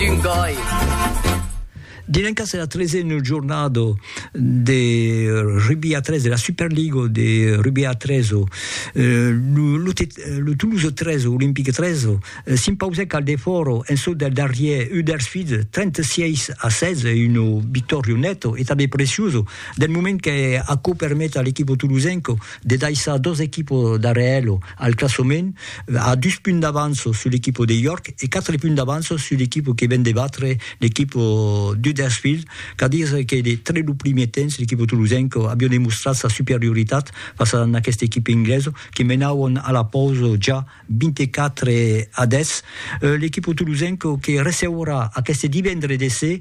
d'un gòi. Dilenka se la tresen jornada de rugby a 3 de la Superliga de rugby a 3. Euh, le Toulouse 13, Olympique 13, euh, s'impausèc al defòro en sot del darrier Huddersfield 36 a 16, un victòrio net e també preciós del moment que aquò permet a l'equipo toulousenco de daissar dos equipos darrèr elo. Al classement, a dus punts d'avanço sul equipo de York e quatre punts d'avanço sul equipo que ven de batre l'equipo d'Huddersfield, qu'a dire que de tre lo primier temps l'equipo tolosenco avió demostrat sa superioritat fas a n'aqueste equipe ingleso que menauon a la pausa ja 24 a 10. L'equipo tolosenco que receurà aqueste divendre de ser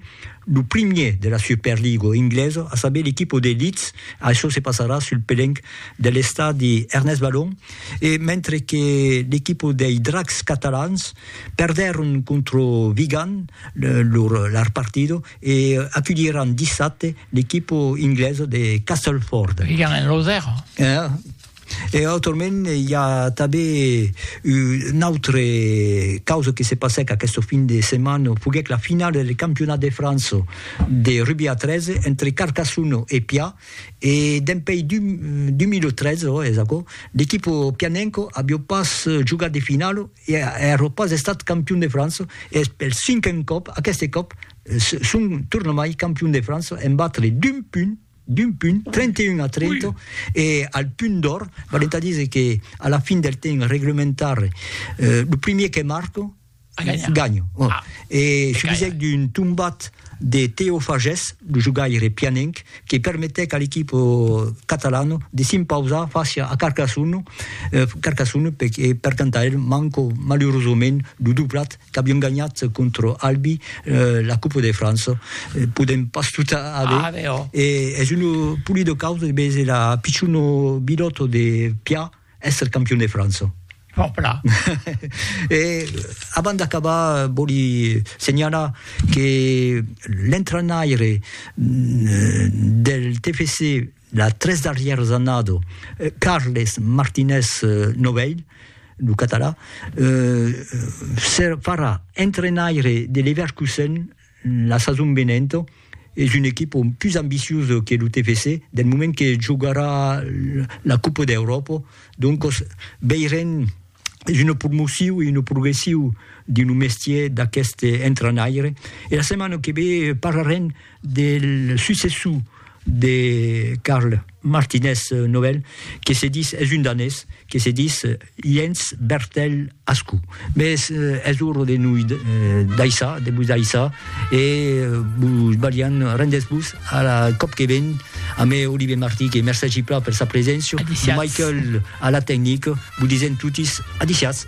lo primier de la Superligo ingleso, a saber l'equipo de Leeds, açò se passarà sul pelenc de l'estadi Ernest Balon e mentre que l'equipa dei Dracs catalans perdèron contra Vigan lor partida e aculhiràn dissabte l'equipa inglesa de Castleford. Vigan en Losèrn. E autrament i a tanben una autra causa que se passèc aquesta fin de setmana, foguèc la finala del Campionat de França de rugbi a 13 entre Carcassona e Pià E dempèi 2003, ò, es aquò, l'equipo pianenco avió pas jogat de finalo e avió pas estat campion de França, e es pel cinquen còp, aqueste còp, son tornamai campion de França en batre d'un punt, d'un punt, 31 a 30, e al punt d'òr, valent a díser que a la fin del temps reglementari, lo primier que marca, Ganha. Ah. E subisèc d'un tombat de Teo Fages, lo jogaire pianenc, que permetèc a l'equipa catalana de s'impausar fàcia a Carcassonne, Carcassonne per, e per tant a el manca malurosament lo doblat qu'avián ganhat contra Albi la Copa de França. Podèm pas tot aver. Ah, e es una polida causa de veser la pichona bilòta de Piat, Èsser campion de França. Fòrt plan. E abans d'acabar, vòli senhalar que l'entrenaire del TFC las tres darrièras annadas, Carles Martínez Novell, lo catalan, farà entrenaire de Leverkusen La sason venenta es un equipa pus ambiciosa que lo TFC del moment que jogarà la Copa d'Euròpa, doncas veirem, es una promocion e una progression dins lo mestièr d'aquest entrainaire e la setmana que ve parlarem del successor de Karl Martinez Nobel que se ditz, es un danés, que se ditz Jens Bertel Ascou. Mès es ora de noi daissar, de vos daissar, e vos balhan, rendètz-vos a la còp que ven, amé Olivier Martí, que mercègi plan per sa preséncia, Michael a la tecnica, vos disèm totis adiciatz!